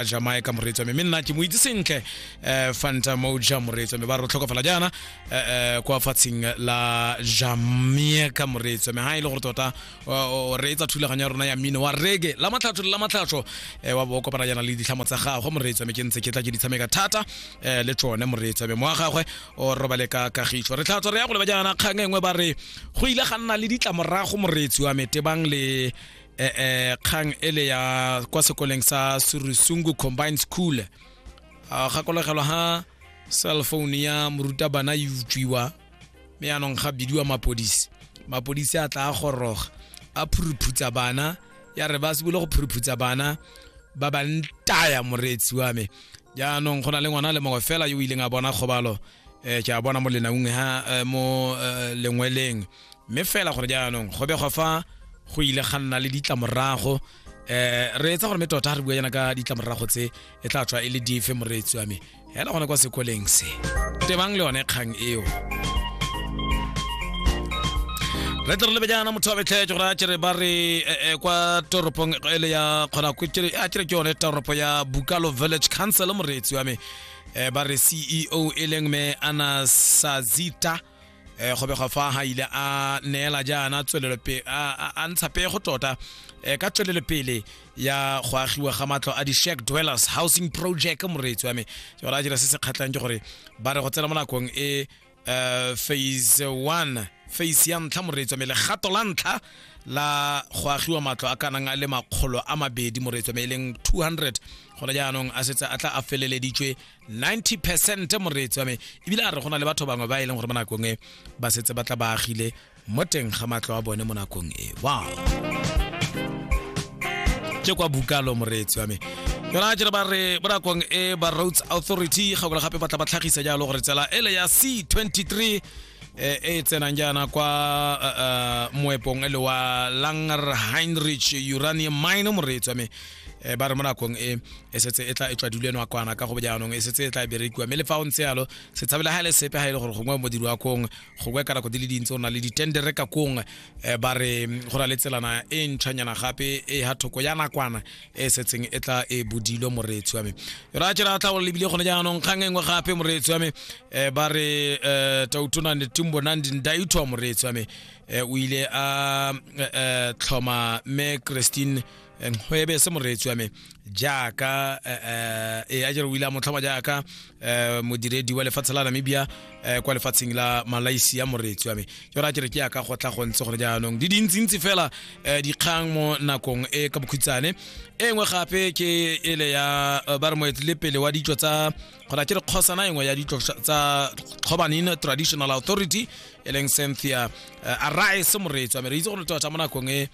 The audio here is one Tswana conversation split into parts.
a jamaica moreetso me mme nna ke mo itse sentle um fanta moja moreetso me ba re tlhokofala jaana um kwa fatsheng la jamaica moreetso me ga e le gore tota o reetsa thulaganyo ya rona ya mmino wa rege la matlhatsho la matlhatsho um wa bo kopana jaana le ditlhamo tsa gagwe moreetso me ke ntse ke tla ke di tshameka thata um le tsone moreetso me moa gagwe o robale ka kagiso re tlhatswa re ya go leba jaana kgang e nngwe ba re go ile ga nna le ditlamorago moreetsi wa metebang le eh, eh, kgang e le ya kwa sekoleng sa surusungu combined school a gakologelwa ha cell phone ya morutabana e utswiwa mme yaanong ga bidiwa mapodisi mapodisi a tla a goroga a phuruphutsa bana ya re ba sebole go phuruphutsa bana ba ba ntaya moreetsi wa me jaanong go na le ngwana le mongwe fela yo o ileng a bona kgobalo um ke a bona mo lenaung ha eh, mo eh, lengweleng mme fela gore jaanong go begwa fa go ile ga nna le ditlamorago eh re etsa gore me tota re bua yana ka ditlamorago tse e tla tswa e le dife moreetsi wa me hela gone kwa sekoleng se tebang le one kgang eo re tle re lebe jaana motho wa betlhetse gore a kere ba re eh, eh, kwa toropong ele ya kgona a kere ke yone toropo ya bukalo village council moreetsi wa me eh, ba re ceo e leng me ana sazita eh go bega fa ha ile a neela jaana tswelelo pe a ntsha pego tota eh ka tswelelo pele ya go agiwa ga matlo a di shack dwellers housing project moreetsi wa me ke gore a dira se se kgatlhang ke gore ba re go tsena mo nakong e eh, phase 1 phase ya ntlha moreetsi wa me legato la ntlha la go agiwa matlo a kanang a le makgolo a mabedi moreetsi wa me e leng 200 gone jaanong a setse a tla a feleleditswe 90 percent moreetsi wa me ebile a re go na le batho bangwe ba e leng gore mo nakong e ba setse ba tla ba agile mo teng ga matlo a bone mo nakong e wow ke kwa bukalo moreetsi wa me yona jere ba re mo nakong e ba roads authority gakola gape ba tla ba tlhagisa jalo gore tsela ele ya c23 e e tsenang jaana kwa moepong e le wa langer heinrich uranium mine moreetsi wa me eh, ba re mo nakong e e setse e tla e tswadilwe nakwana ka go bojaanong e setse e tla e berekiwa mme le fa o ntse yalo se tshabela ga le sepe ga e le gore gongwe modiri wa kong gongwe ka nako di le dintsi o na le ditendere ka kong eh, ba re mm, go na le tselana e ntšhwanyana gape e ha thoko ya nakwana e setseng e tla e bodilwe moreetsi wa me ra tšera tla go lebile gone jaanong kgang e nngwe gape moreetsi wa me eh, ba re um tautona netimbo nandi ndaitho moreetsi wa me o ile a tlhoma me christine nkgwebe se moreetsi wa me jaaka eh, eh, e a jere o ile a motlhoma jaaka eh, modiredi wa lefatshe la namibia kwa lefatsheng la malaysia moreetsi wa me jore a kere ke yaka go tla go ntse gore jaanong di dintsintsi fela dikgang mo nakong e ka bokhutshane e nngwe gape ke ele ya ba re moetlele pele wa ditso tsa gona ke re kgosana engwe ya ditlo tsa kgobanin traditional authority e leng cynthia arise moreetsi wa me re itse gore tota mo nakong e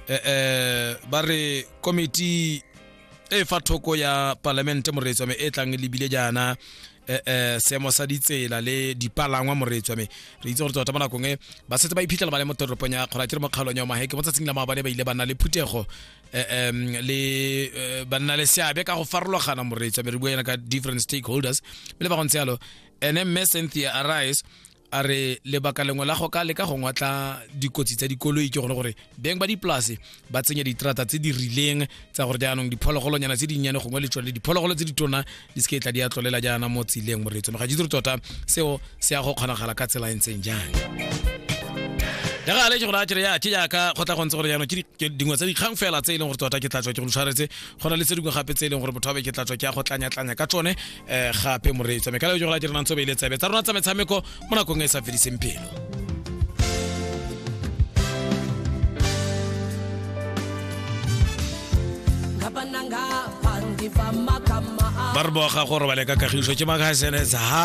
eh, eh, ba re komiti e fa thoko ya palamente moreetswa me e tlang lebile jaana eh, eh, seemo sa ditsela le dipalangwa moreetswa me re itse gore tota mo nakong e ba setse ba iphitlhela ba le mo toropong ya kgora ke re mo kgaolong ya omaheke mo tsatsing la maabane ba ile ba nna le phuthego eh, em, le eh, ba nna le seabe ka go farologana moreetswa me re bua yana ka different stakeholders mme le ba go ntse yalo ene mme cynthia arise a re lebaka lengwe la go ka leka go ngwatla dikotsi tsa dikoloi ke gone gore beng ba dipolase ba tsenya diterata tse di rileng tsa gore jaanong diphologolonyana tse dinnyane gongwe le tsone diphologolo tse di tona di se ke tla di a tlolela jaana mo tsileng moreetso ga jitse tota seo se ya go kgonagala ka tsela e ntseng jang ya ga le ke gore a kere ya ke jaaka go tla go ntse gore jaanong ke dingwe tsa dikgang fela tse e leng gore tota ke tla tswa ke go tshwaretse go na le tse dingwe gape tse e leng gore botho ba be ke tla tswa ke ya go tlanyatlanya ka tsone eh, gape moreetsa mekala yo jogala direnang tso beile tsebe tsa rona tsa metshameko mo nakong e e sa fediseng phelo ba re boga gore ba leka kagiso ke makgasenetsa